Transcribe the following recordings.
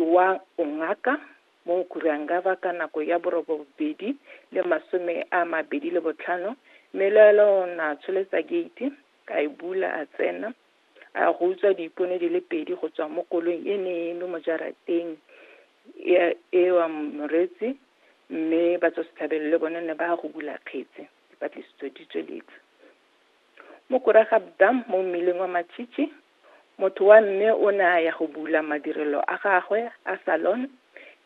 wa bongaka mo Nkurangaba ka nako ya borobobedi le masome a mabedi le botlhano mme le ela o ne a tsholetsa geiti a e bula a tsena a ya go utswa diipone di le pedi go tswa mo kolong e ne e eme mo jarateng e- e wa moretsi mme batswasetlhabelo le bone ne ba ya go bula kgetse dipatlisiso di tsweletse mo koragabda mo mmileng wa matšhitšhi Motho wa mme o ne a ya go bula madirelo a gagwe a salon,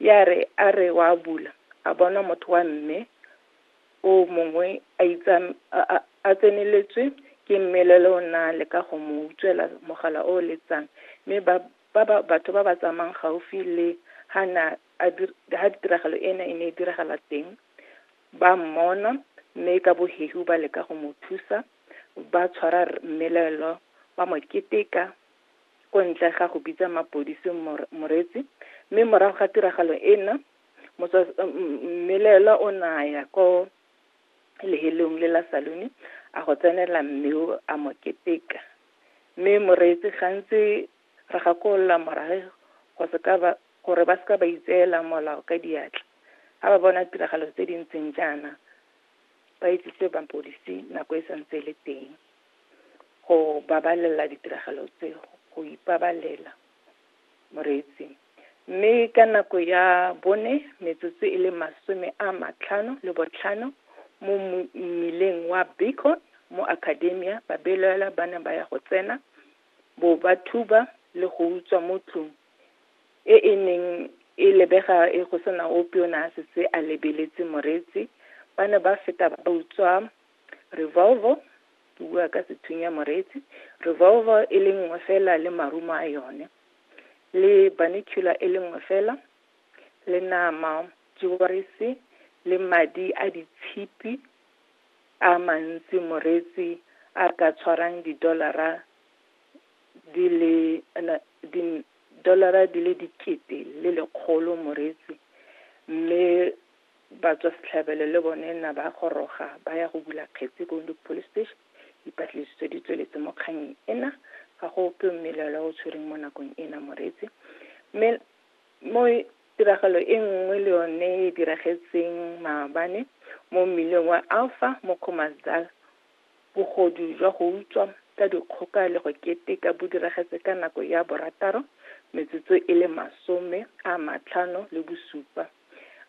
ya re a re wa bula, a bona motho wa mme o mongwe a itsa a, a, a tseneletswe ke mmelelo o na leka go mo utswela mogala o letsang, mme ba ba ba batho ba ba tsamayang gaufi le ha na a dir, ha tiragalo ena e ne e diragala teng ba mmona, mme ka bohehu ba leka go mo thusa Ba tshwara mmelaelwa ba mo keteka ko ntle ga go bitsa mapodisi moretsi mme morago ga tiragalo ena mmelaelwa o naya ko lehelong le la salone a go tsenela mme o a mo keteka mme moreetsi gantsi re gakolola morage go seka ba gore ba seka ba itseela molao ka diatla ga ba bona tiragalo tse di ntseng jaana ba itsise mapodisi nako e santse e le teng go babalela ditiragalo tse go ipabalela moreetsi mme ka nako ya bone metsotso e le masome a matlhano le botlhano mo mmileng wa bacon mo academia babelaela ba ne ba ya go tsena bo ba thuba le go utswa mo tlong e e neng, e lebega e go sena ope yo o ne a setse a lebeletse Moreetsi, ba ne ba feta ba utswa , revolver, ke bua ka sethunya Moreetsi, revolver e le nngwe fela le marumo a yone, le binocular e le nngwe fela, le nama, jewelries, le madi a ditshipi, a mantsi Moreetsi a ka tshwarang di-dollar-ra. di le di dolara di le dikete le lekgolo moreetsi mme batswa setlhabelo le bone na ba goroga ba ya go bula kgetse ko Windhoek police station dipatlisiso di tsweletse mo kganyeng ena ga go ope mmelelo o tshwereng mo nakong ena moreetsi mme mo tiragalo e nngwe le yone e diragetseng maabane mo mmileng wa alpha mo commasdal Bogodu jwa go utswa ka dikgoka le go keteka bo diragetse ka nako ya borataro metsotso e le masome a matlhano le bosupa,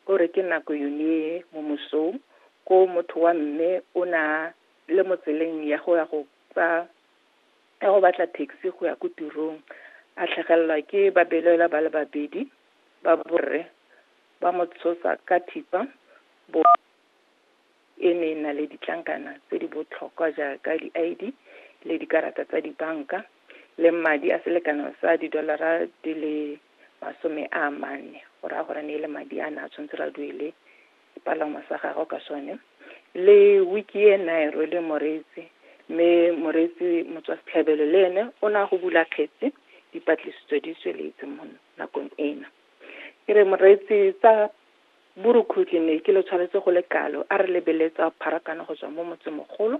o re ke nako yone mo mosong ko motho wa mme o ne a le mo tseleng ya go ya go tsa ya go batla taxi go ya ko tirong a tlhagelelwa ke babelaelwa ba le babedi ba borre ba mo tshosa ka thipa bo e ne e na le ditlankana tse di botlhokwa jaaka di-ID le dikarata tsa dibanka le madi a selekano sa didolara di le masome a mane go raya gore ne e le madi a ne a tshwanetse ra duele sepalangwa sa gago ka sone le wiki e na e rwele moreetsi mme moreetsi motswa setlhabelo le ene o ne a go bula kgetsi dipatlisiso di tsweletse mo nakong ena ke re moreetsi tsa Borukhutlhi ne ke lo tshwanetse go le kalo, a re lebeletsa pharakano go tswa mo motsemogolo.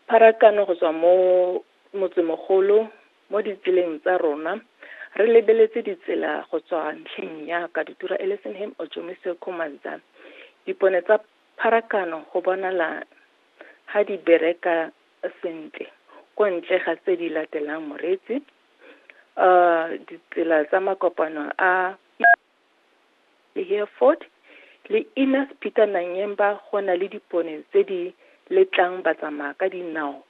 Pharakano go tswa mo motsemogolo mo ditseleng tsa rona, re lebeletse ditsela go tswa ntlheng ya Katutura Ellisonham, Ojomise, Khomanza. Dipone tsa pharakano go bonala ha di bereka sentle ko ntle ga tse di latelang moreetsi, ditsela tsa makopano a le Hereford, le Innes Peter Nanyemba go na le dipone tse di letlang batsamaya ka dinao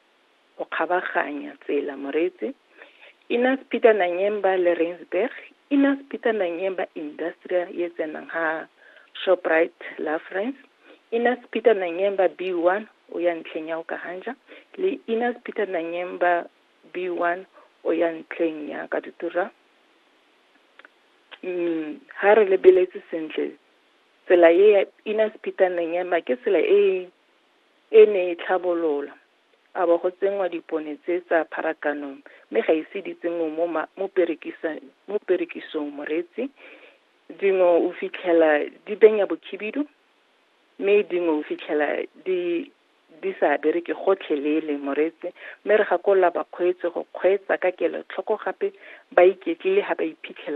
go kgabaganya tsela Moretse, Innes Peter Nanyemba le Rensburg, Innes Peter Nanyemba Industrial ye tsenang ha Shoprite Lafrance, Innes Peter Nanyemba B1 o ya ntlheng ya Okahanja le Innes Peter Nanyemba B1 o ya ntlheng ya Katutura. ha re lebeletse sentle tsela e ya Ina Sephitaneng ema ke tsela e e ne e tlhabolola a bo go tsenngwa dipone tse tsa pharakanong mme ga ise di tsenngwe mo mo perekisang mo perekisong moretsi dingwe o fitlhela di benya bokhibidu mme dingwe o fitlhela di di sa bereke gotlhelele, Moretse, mme re gakolola bakgweetsi go kgweetsa ka kelotlhoko gape ba iketlile ha ba iphitlhela.